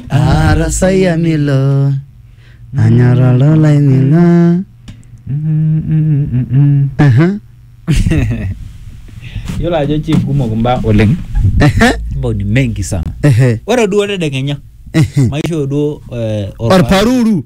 arasaya milo anyorralo laining'a Aha, Yiolo ajo chief kumok imbaa oleng. ehe, Mbao ni mengi sana. ehe, Ore duo tedekenya ehe. maishoo duo eh, orpa- orparuru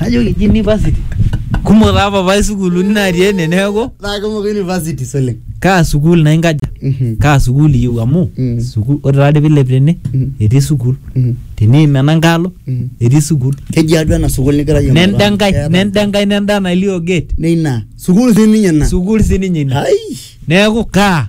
najoki ji university kumok taa papai sukuuluni natii ene neeku naa kumok universities oleng kaa sukuul naa inkaja Mhm. kaa sukuul iyieu amu Mm. sukuul ore taadi piilep tene Mm. etii sukuul Mhm. teniim ena nkaalo Mhm. etii sukuul keji atua ena sukuul nigira yie nenda aing'oru. enkae Keeta- nenda enkae nenda nalio gate neina sukuul sii ninye ina sukuul sininye ina ai neeku kaa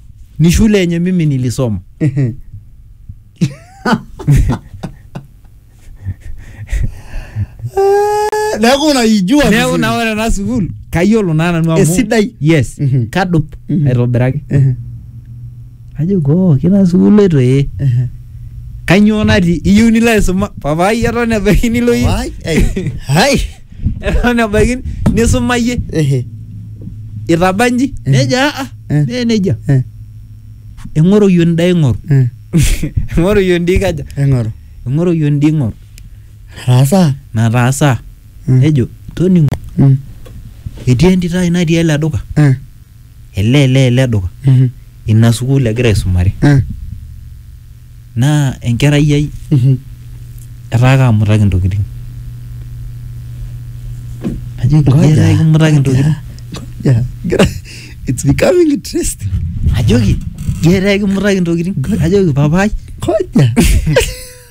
ni shule yenye mimi nilisoma neeku unaijua neeku vizuri. naa ore ena sukuul kayiolo naa nanu amu Esidai. yes Mhm. kadup Mhm. aitobiraki Ehe, ajo koo kina sukuul etu ee ehe. kanyoo natii iyieu nilo aisuma papai eton ebaiki nilo iyie Wai, ei, hai eton ebaiki nisumayie Ehe. itaba nji nejo aa Eh. mee nejia Eh. eng'oroyu endaa ing'oru Eh. eng'oroyu endaa ikaja Eng'oru. eng'oroyu endaa ing'oru Ataasa. nataasa Mm. nejo toning'o Mm. etii entito ai natii ele duka Eh. ele ele ele duka Mhm. ina sukuul egira aisumare Eh. naa enkerai ai Mhm. etaa kaamutaki intokitin najoki Ngoja, "Iyata ekimutaki intokitin ngoja, ngoja. It's becoming interesting. ajoki "Iyata ekimutaki intokitin ajoki papaai Ngoja.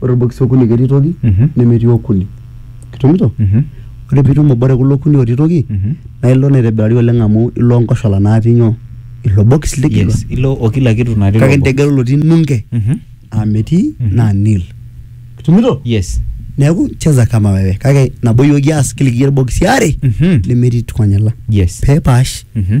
ore irbokisi okuni ketii toki Mhm. nemetii okuni kitumito Mhm. ore piitum obo te kulo okuni otii toki Mhm. naa ilo naa aitobirari oleng amu ilo nkoshola natii nyoo ilo bokis ligila Yes, ilo o kila kitu natii kake ilo box. integelu lotii nunge Mhm. aa metii Mhm. naa nil kitumito Yes. neeku cheza kama wewe kake nabo iyioki aas kila ikiata irbokisi aare Mhm. nemetii tukonyala Yes. peepaash Mhm.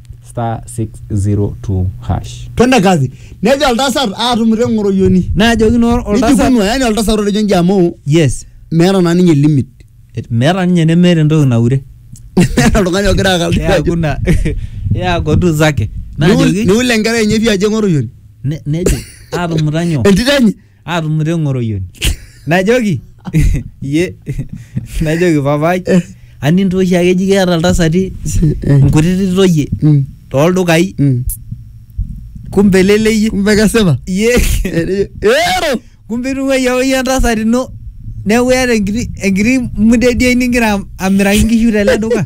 star 602 hash twende kazi nejo oltasat aatumito eng'oroyioni najoki naa oltasat nijikunu yani oltasat otejo inji amu yes meeta naa ninye limit Et- meeta ninye nemeeta entoki naure meeta oltung'ani ogira akaldi ajo yakuna yakotu zake Niul- najoki niul enkerai enye pii ajo eng'oroyioni ne- nejo atumuta nyoo entito enye aatumuta eng'oroyioni najoki ye najoki papai anintooshi ake eji keeta iltasati nkutiti toyie Mm. tooldukai Mm. kumbe leleyie kumbe kesipa ye ero kumbe itung'uayie apa iyie entasat ino neeku iyata enkiti enkiti mudediai nigira amiraki nkishu tele duka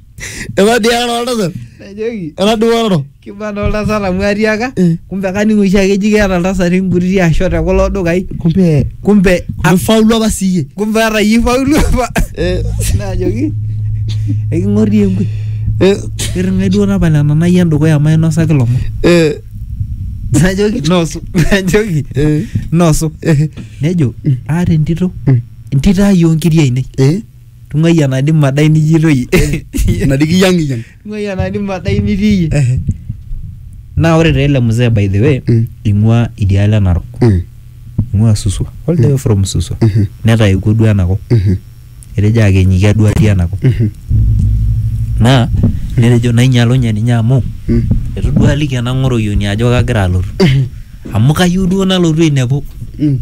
Eba dia kana oltasa. Najoki Ena duaroro. kibana oltasat amu atiaka Eh. kumbe kaning oshi ake eji keeta iltasati inkutiti asho te kulo dukai Kumbe kumbe a- ifaulu apa siiyie. kumbe ata iyie ifaulu apa Eh. najoki eking'orie enkwe Eh. irring'ai duo tapala ena nai endukuya mainosaki ilomon Eh. najoki nosu najoki Eh. nosu Eh. nejo aata entito Mm. entito ai oonkiri ainei Eh. Tung'ai enadi madai nijito iyie. Enadi kiyang'iyang'. Tung'ai enadi madai nitii iyie. Ehe. Naa ore taa ele mzee by the way Mm. ing'ua idialo e Narok. Mm. Ing'ua Suswa. All the way from Suswa. Mhm. Netaewuo duo enakop. Mhm. Etejo akenyiki aduo atii enakop. Mhm. Naa netejo nainyalunye ninye amu Mm. eitu duo aliki ena ng'oroyioni ajo kagira alotu. Amu kayieu duo nalotu ainepu. Mm.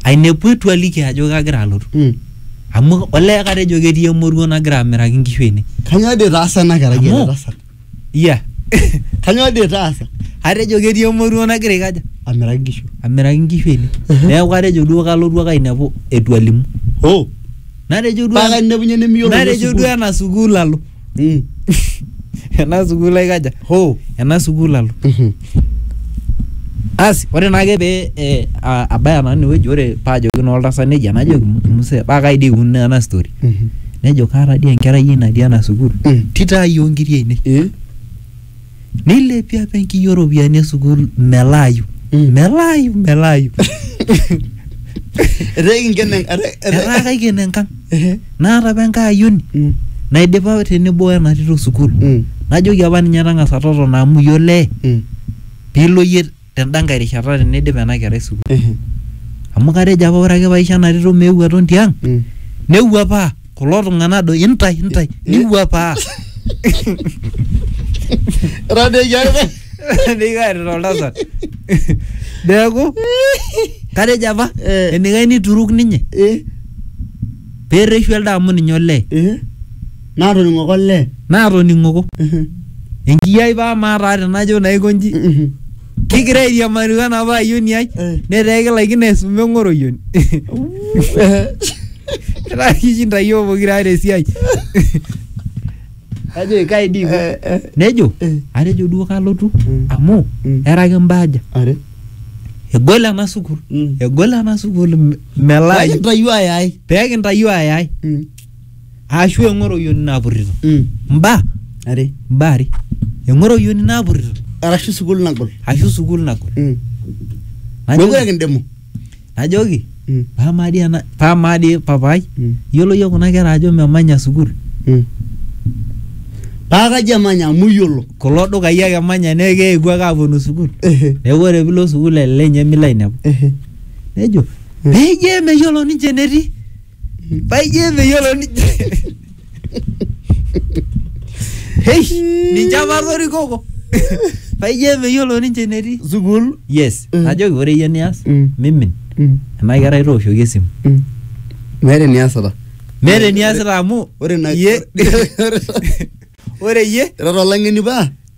Ainepu eitu aliki ajo kagira alotu. Mm. amu olee katejo ketii emoruo nagira amiraki nkishu ene Kanyoo dii itaasa ena kerai Amu- ele tasat? iya Kanyoo dii itaasa? atejo ketii emoruo nagira aikaja Amiraki nkishu. amiraki nkishu ene neeku atejo duo kalotu ake ainepu etu alimu Oh, natejo duo paa kainepunye nimiyiolo natejo duo ena sukuul alo Mm. ena sukuul aikaja Ho. ena sukuul alo Mhm. asi ore naake pee eh, a- abaya nanu inewueji ore paajoki naa oltasat nejia najoki muse paa kai dii ikununo ena story Mhm. nejo kaata dii enkerai ai natii ena sukuul Mm. tito ai oonkiri ainei Eh? neilepie apa enkiyio oropiyiani e sukuul melaayu melaayu melaayu etaa ekinken en- etaa- etaa etaa- kaiken enkang Ehe. naata apa enkae ayioni Mm, naidipa tenebo wena tito sukuul mm, najoki apa ninye tang'asa totona amu iyiolo ee mm. piilo iyie tenda nkae rishata teneidip ena kerai sukuul Ehe. amu katejo apa ore ake paisho ena tito meeu aton tiang Mm. newuapaa kulo tung'anak do intai intai niwuapaa Era nejia ake. nikaarita oltasat neeku katejo apa Eh. enikae nituruk ninye Eh, pereshu elde amu ninye olee eh. Naatoning'oko olee. Naatoning'oko. Enkiyi ai paa amaa taa tenajo naa aiko inji. Kigira airiamari wena paa ayioni ai netaa ekilaikino aisuma eng'oroyioni. Etaa kishinda iyiook pokira aare esiai. Najoki kai dii iko. Nejo atejo duo kalotu amu era kimbaaja. Are. Egol ena sukuul. Egol ena sukuul melaayu. Peekintayuo ayai. Peekintayuo ayai. aashu eng'oroyioni napurrito Mm. mbaa Are. mbaa are eng'oroyioni napurrito Arashu sukuul nagol. ashu sukuul nagol Mm. Najoki- Mekure kindemu. najoki Mm. paamaa dii ena paamaa dii papaai Mm. iyiolo yie kuna kera ajo memanya sukuul Mm. Paa kaji emanya amu iyiolo. kulo dukai ake emanya neeku keewuo ake aaponu sukuul Ehe. neeku ore piilo sukuul ele lenye milo ainepu Ehe. nejo Mm. peyie meyiolo ninche enetii Payie meyiolo ninche. Hei, ninche apa atorikoko. Payie meyiolo ninche enetii. Sukuul. Yes, Mm. najoki ore iyie nias, Mm. mimin. Mm, Ena kerai tooshoki esimu. mm. Meeta eniasita. Meeta eniasita amu Ore ina iyie ore iyie ira tolang'eni paa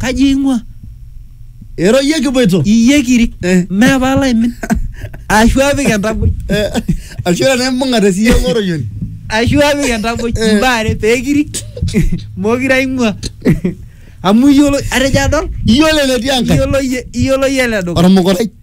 kaji eing'ua Ero iyie kipuoito. iyie kiri Eh. mee paalo aimin ashu apik entaboi Eh, Ashu ore tenaimbung'a te siiyio ng'oroyoni. ashu apik entaboi Eh. imbaa are pee kiri mokire aing'ua amu iyiolo atejo adol Iyiolo enetii Enkai. iyiolo iyie iyiolo iyie ele dukuya Ormukurai.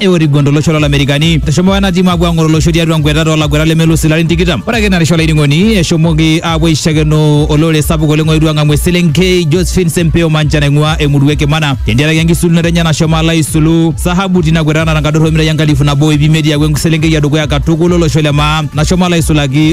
eorigua tolosho lolamerikani eshomo ena timu apuo ang'oru olosho tiatua nkwetata olaguetak lemelusi larin tikitam ore ake narisha olainining'oni eshomoki apuo aishakeno olorere sapuk oleng oetuo ang'amu eselenkei josephine sempeo mancha naing'ua emurua e kimana tentiaraki enkisulunoto enye nashomo alo aisulu sahabu tina kwetata natankadorra omitai enkalifu nabo ip imiet iaku eselenkei edukuya katukul olosho le maa nashomo alo aisulaki